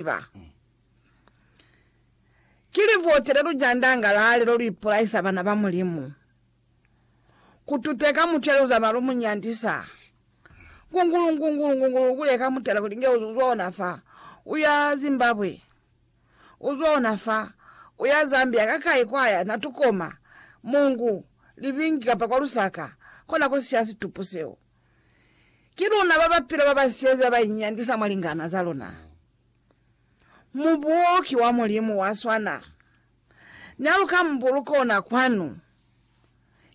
ziba. Ki livote le lu jandangalale lo lu ipulaisa bana ba Mulimu, ku tuteka mutu ya liuza malu mu nyandisa, ngungulu, ngungulu, ngungulu, ku leka mutala kuli nge u zwa ona fa, u ya Zimbabwe, u zwa ona fa, u ya Zambia, ka kai kwa ya, na tukoma, mungu, libingi kapa kwa lusaka, kona ko siya situpu seo. Ki luna ba ba pila ba ba siyezi ba ba inyandisa mwa lingana za luna. Mubuo ki wa Mulimu wa swana. N'a lu ka mu buluka ona kwanu.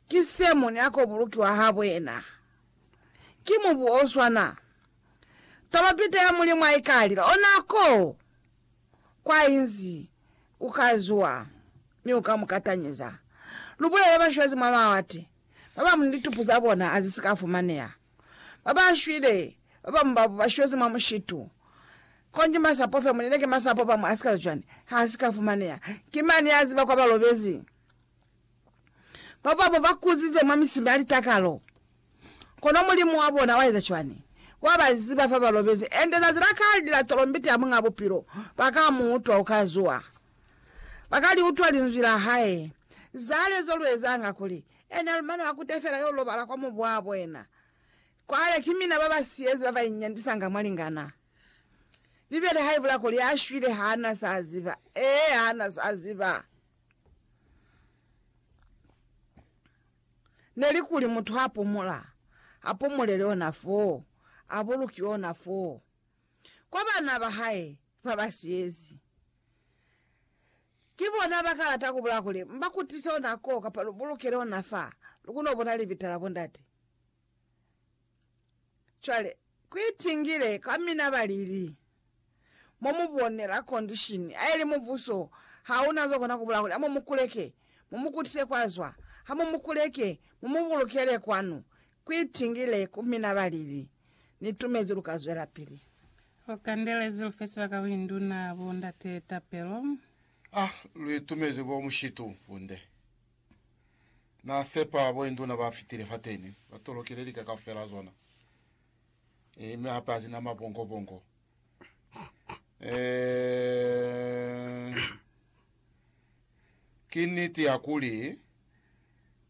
Ki se mu ni a ko bulukiwa habo yena. Ki mubuo o swana. Tolopita ya Mulimu ha i ka lila, ona ko kwa inzi u ka zuwa mi u ka mu katanyeza. Lu bulele bashwezi mwa mawate. ba bamu ni litupu za bona a zisi ka fumaneha, ba ba shwile, ba bamu babu ba shwezi mwa mushitu, konji masapo fe, munene ki masapo, bamu a sikaza cwani, ha si ka fumaneha, ki mani ya ziba kwa ba lobezi? Ba bamu ba kuzize mwa misimi ya litakalo, kono Mulimu wa bona wa eza cwani? Wa ba ziba fa ba lobezi, ende zazi la kale, lila tolombiti ya Muñ'a Bupilo, ba ka mu utwa, u ka zuha. Ba ka li utwa linzwi la hae. Cwale zo lu ezanga kuli, Ena lu mane wa kute fela yo lobala kwa mubu wa bona. Cwale ki mina ba ba siyezi ba ba inyandisanga mwalingana. Bibele ha i bula kuli, A shwile ha a na sa ziba. Ee, ha a na sa ziba. Ne li kuli mutu ha pumula, a pumulele ona foo, a buluki ona foo. kwa bana ba hae ba ba siyezi. Ki bona ba ka lata ku bula kuli, M'ba kutise ona ko kapa lu bulukele ona fa, lu kono bona libita la bondate. Cwale, ku itingile kwa mina ba lili. Mo mu bonela kondishini a ili mubuso ha una zo kona ku bula kuli, Amu mu kuleke, mu mu kutise kwa zwa, ha mu mu kuleke, mu mu bulukele kwanu. Kuitingile ku mina ba lili, Ni tumezi lu ka zwelapili. Lu kandelezi lu fe sibaka ku induna, bo ndate tapelo. A lu itumezi ko mushitu bunde. Na sepa bo induna ba fitile fateni, ba tolokile lika kaufela zona, mi hape hazina mabongo-bongo. Eh, ki niti ya kuli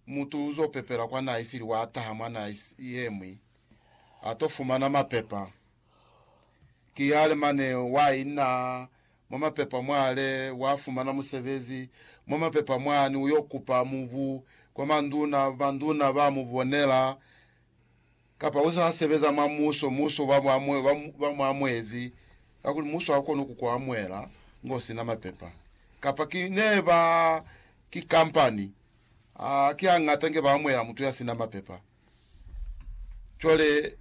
mutu uzopepela kwa naha isili wa ataha mwa naha is- yemwi atofumana mapepa ki yale mane wa ina mwa mapepa mwale wafumana musebezi mwa mapepa mwani uyokupa mubu kwa manduna banduna bamubonela Kapa uze wa sebeza mwa muso, muso ba mu, ba mu amuezi, kakuli muso ha ukoni ku ku amuela ngo sina mapepa. Kapa ki ne ba, ki kampani, a ki hañata nge ba amuela mutu ya sina mapepa. Cwale,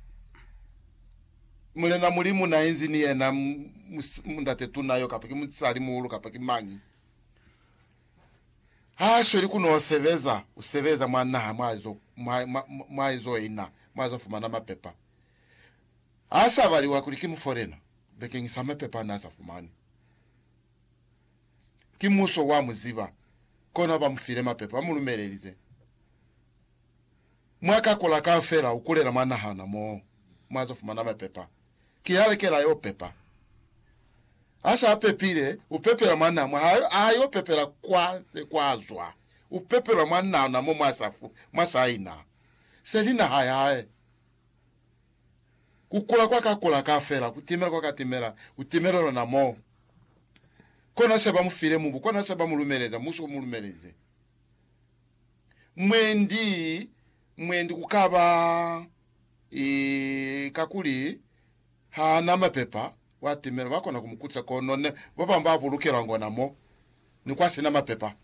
Mulena Mulimu na inzi ni yena, mundate tuna yo, kapa ki musali muhulu, kapa ki mañi, ha a sweli ku n'o sebeza, u sebeza mwa naha mwa zo, mwa, mwa, mwa ezo ina, mwa zo fumana mapepa. Ha sa baliwa kuli ki mufolena, bekeng sa mapepa a n'a sa fumani. Ki muso wa mu ziba, kona ba mu file mapepa, ba mu lumelelize. Mwa ka kula kaufela u kulela mwa nahana moo, mwa zo fumana mapepa. ki ya lekela yo pepa. Ha sa pepile, u pepela mwa na mwa hae, a yo pepela kwa ne kwa zwa. U pepelwa mwa na na mo mwa sa fu, mwa sa ina se li naha ya hae. Ku kula kwa ka kula ka fela, ku timela kwa ka timela, ku timelelwa na mo. Kona se ba mu file mubu, kona se ba mu lumeleza, muso u mu lumelize. Mwendi Mwendi ku ka ba kakuli ha na mapepa, wa timela, ba kona ku mu kuca, kono ne ba bañwi ba bulukelwa ngona mo, ni kwa si na mapepa.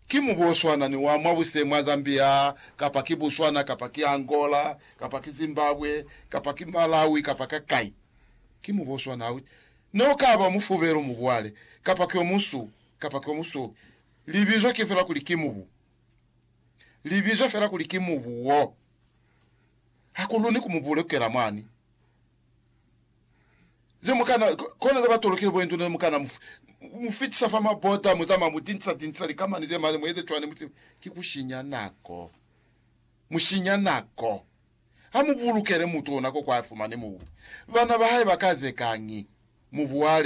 Ki mubu o swana ni wa mwa bushe mwa Zambia, kapa ki Botswana, kapa ki Angola, kapa ki Zimbabwe, kapa ki Malawi, kapa ka kai. Ki mubu o swana. Ha u ne u ka ba mufubelu, mubuale, kapa ki o muswu, kapa ki o musweu. Libizo ki fela kuli ki mubu. li bizwa fela kuli ki mubu wo. Ha ku luni ku mu bulukela mwani. Ze mu kana, kona ze ba tolokile bo indu ne mu kana mu, mu fitisa fa mabota, mu zama mu tinsa tinsa likamani ze mali, mu eze cwani, mu sibe. Ki ku shinya nako. Mu shinya nako. Ha mu bulukele mutu ona ko kwa fumani mubu. Bana ba hae ba ka zekañi? Mu buale.